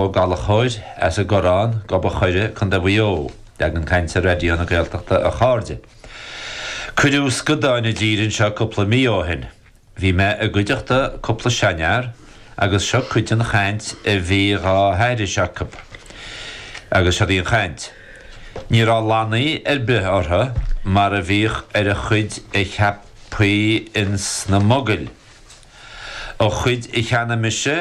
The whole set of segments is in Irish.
Ó Gallachóir, as an gCorrán, Gob a' Choire, Co. Mhaigh Eo, leagan cainte Raidió na Gaeltachta A chairde, cuireadh scadáin i dtír anseo cúpla mí ó shin. Bhí mé i gcuideachta cúpla seanfhear agus seo cuid den chaint a bhí dhá haithris acu. Agus siod í an chaint. Ní raibh lannaí ar bith orthu mar a bhíodh ar an chuid a cheapfaí ins na mogaill. Ó, an chuid a cheannaigh mise,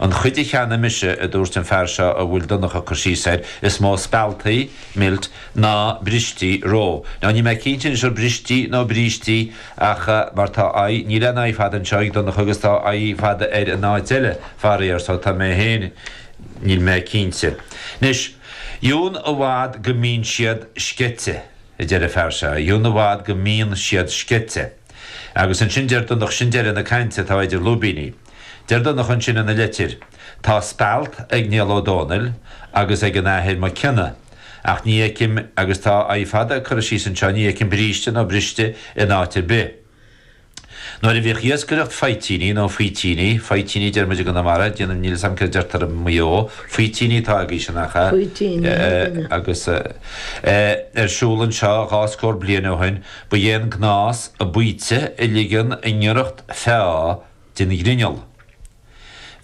An chuid a cheannaigh mise, a dúirt an fear seo a bhfuil Donncha cur síos air, is mó spealtaí, milt, ná bristí, roe. Nó níl mé cinnte anois an bristí nó brístí ach mar tá i, níl aon i fada anseo ag Donncha agus tá i fada air in áit eile, faraor, so tá mé féin, níl mé cinnte. Anois, dheamhan i bhfad go mbíonn siad sceite, a deir an fear seo, dheamhan i bhfad go mbíonn siad sceite. Agus ansin deir Donnchadh, sin deireadh na cainte atá idir lúibíní. Deir Donnchadh ansin ina leitir, 'Tá spealt ag Niall Ó Dónaill agus ag an Athair Mac Cionnaith, ach ní fheicim, agus tá i fada curtha síos anseo, ní fheicim bríste nó briste in áit ar bith. Nuair a bhíodh iascaireacht faoitíní, nó faoitíní, faoitíní a deir muid i gConamara, déanann, níl 'fhios a'm céard a deirtear i Maigh Eo, faoitíní atá agaibhse, nach ea? Faoitíní, thig a bheith. agus, eh, ar siúl anseo dhá scór bliain ó shin, Ba é an gnás baoite a ligean i ngiorracht feá den ghrinneall.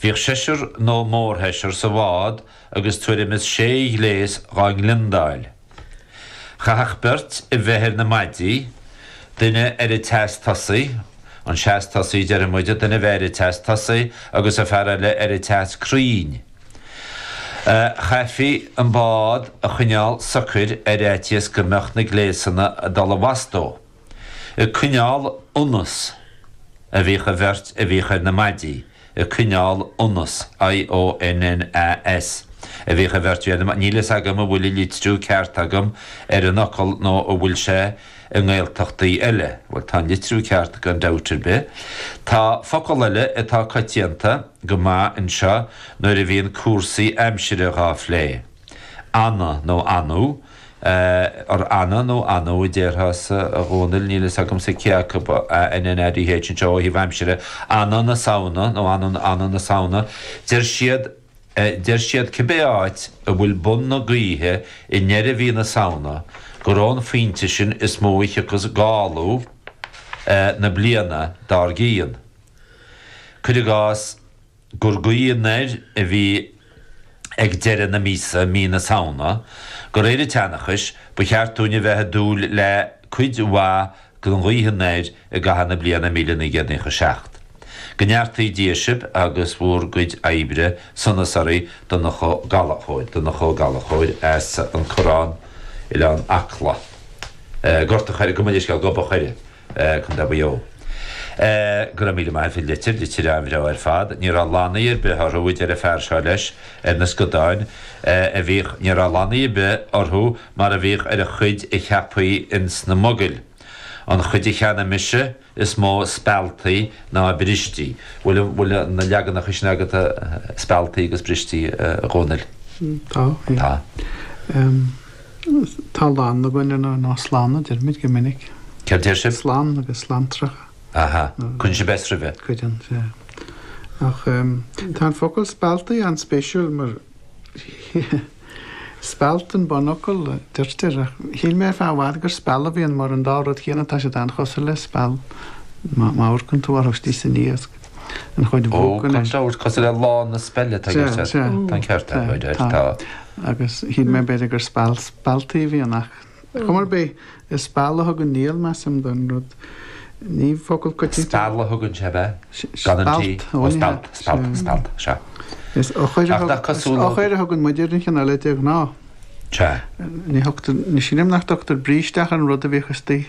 Bhíodh seisear nó mórsheisear sa bhád agus tuairim is sé ghléas dhá ngliondáil. Chaithfeadh beirt a bheith ar na maidí, duine ar an tseas tosaigh, an seas tosaigh déarfadh muide, duine a bheith ar an tseas tosaigh agus an fear eile ar an tseas crainn, Chaithfí an bád a choinneáil socair ar fhaitíos go mbeadh na gléasanna ag dul i bhfastó. Ag coinneáil ionnas a bhíodh an bheirt a bhíodh ar na maidí, ag coinneáil ionnas, IONNAS, a bhíodh an bheirt a bhí ar na, níl a fhios agam an bhfuil an litriú ceart agam ar an fhocal nó an bhfuil sé, i nGaeltachtaí eile. Bhuel, tá an litriú ceart agat gan dabht ar bith. Tá focal eile atá coitianta go maith anseo nuair a bhíonn cúrsaí aimsire dhá phlé. Annadh nó annú? Or annadh nó annú a déarfása, a Dhomhnaill, níl fhios agamsa cé acu, ANNADH anseo ó thaobh aimsire, annadh na Samhna nó annú na Samhna. Deir siad. Deir siad cibé áit a bhfuil bun na gaoithe i ndeireadh mhí na Samhna gur ón phointe sin is mó a thiocfas gála na bliana dár gcionn. Cuir i gcás gur gaoth anoir a bhí ag deireadh na míosa, mí na Samhna, de réir an tseanchais, ba cheart dúinn a bheith ag dúil le cuid mhaith Go nglaoigh an air i gcaitheamh na bliana míle naoi gcéad naocha seacht. Go neartaí Dia sibh agus bhur gcuid oibre sonas oraibh Donncha Ó Gallchóir, Donncha Ó Gallchóir as an Corrán, Oileán Acla, Gort a Choir, gabh mo leithscéal, Gob an Choire, Co. Mhaigh Eo. Go raibh míle maith agat as an litir, litir an-bhreá ar fad. Ní raibh lannaí ar bith orthu a deir an fear seo leis, ar na scadáin a bhíodh, ní raibh lannaí ar bith orthu, mar a bhíodh ar an chuid a cheaptaí ins na mogaill. An chuid a cheannaigh mise, is mó spealtaí ná brístí. Bhfuil an, bhfuil na leaganacha sin agat a, spealtaí agus brístí, a Dhomhnaill? Tá, aye. Tá. Ehm, tá lann againn ar na, nó slann a deirimid go minic. Céard a deir sibh? Slann agus slanntracha. Aha. Cuireann sibh S roimhe? Cuireann, yeah. Ach, ehm, tá an focal spealtaí an-spéisiúil mar, Speilt an bunfhocal, deirtear, ach shíl mé ar feadh i bhfad gur speal a bhí ann, mar an dá rud chéanna, tá siad an-chosúil le speal. Má amharcann tú orthu istigh san iasc, an chuid bhog go léir. Ó, tá siad cosúil le lann na speile, atá ag inse. Tá an ceart agat, tá. Agus shíl mé b'fhéidir gur speal spealtaí a bhí ann, ach. Chuma ar bith, is speal a thugann Niall, measaim, don rud. Ní focal coitianta. Speal a thugann sé, ab ea? Gan an T? Speilt, ó ní hea. Speilt, speilt, speilt, sea. Is eochair a thugann muid ar an chineál eile de ghnáth. Sea. Ní thugtar, ní shílim nach dtugtar bríste ach ar an rud a bhíodh istigh.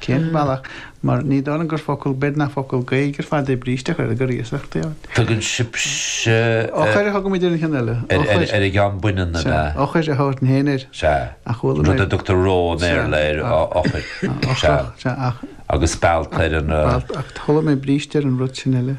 Cén bealach? Mar ní dóigh liom gur focal, b'fhéidir nach focal Gaeilge ar fad é bríste ach gur, gur iasacht atá ann. Tugann sibhse. Eochair a thugaimid ar an cheann eile. Eochair. Ar an gceann baineann ab ea? Eochair a thabharfainn féin air. Sea. Ach chuala mé. Rud a dtugtar roe i mBéarla air, eochair. Sea. Sea ach. Agus speilt ar an. Speilt ach chuala mé bríste ar an rud sin eile.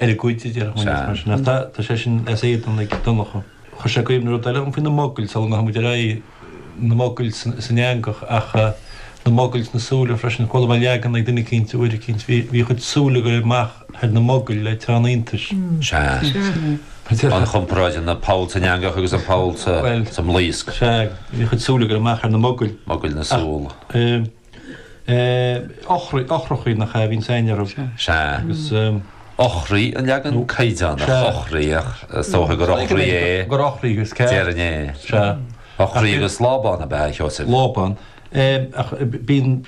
ar a gcuid oibre agus mar sin de. Tá sé sin as éadan ag Donncha. Chuir sé i gcuimhne rud eile dhom faoi na mogaill sula ngabhfaimid ar aghaidh, na mogaill san eangach ach na mogaill sna súile freisin. Chuala mé leagan ag duine éicint uair eicínt, bhí a chuid súl ag goil amach thar na mogaill le teann iontais. Sea. An chomparáid idir an poll san eangach agus an poll sa mblaosc. Sea. Bhí a chuid súl ag goil amach thar na mogaill. Mogaill na súl. eochrachaí nach ea a bhíonns i nGaillimh. Sea. Agus. eochraí an leagan caighdeánach. Sea. eochraí ach is dócha gur eochraí é. gur eochraí is ea. deireann é. Sea. eochraí agus lábán ab ea a Sheosaimh. lábán. Ach bíonn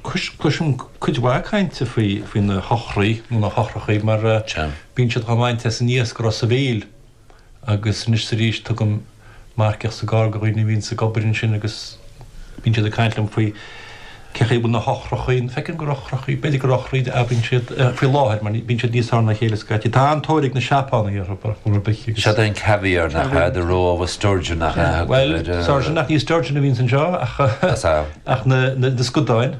cloisim cuid mhaith cainte faoi na heochraí nó na heochrachaí mar. Sea. bíonn siad dhá mbaint as an iasc i Ros a' Mhíl. agus anois 's arís tugaim marcaíocht sa gcarr go dhaoine a bhíonns ag obair ansin agus bíonn siad ag caint liom faoi cé chaoi a bhfuil na heochrachaí, feicim gur eochrachaí, b'fhéidir gur eochraí a abraíonn siad faoi láthair mar bíonn siad níos fearr ná a chéile scaití. Tá an-tóir ag na Seapánaigh orthu ar chuma ar bith agus. Sin é an caviar nach ea, the roe of a sturgeon nach ea. Bhuel, sturgeon ach ní sturgeon a bhíonns anseo ach na scadáin.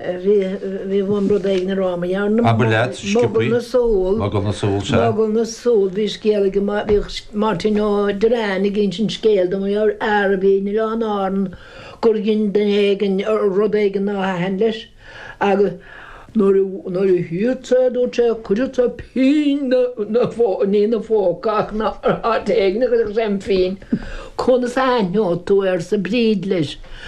Bhí chun rud éigin a rá maidir le Mogall na Súl, Mogall na Súl, sea. Mogall na Súl, bhí scéal ag, bhí Máirtín Ó Direáin ag insint scéil dom ar fhear a bhí in Oileáin Árann gur dhein duine éigin rud éigin nár thaitin leis agus nuair a, nuair a chífeadh sé, dúirt sé, chuirfeadh sé pingin de, de, ní ina phóca ach in áit éigin a chuirfeadh sé an phingin. Conas a aithneoidh tú, arsa Bríd leis.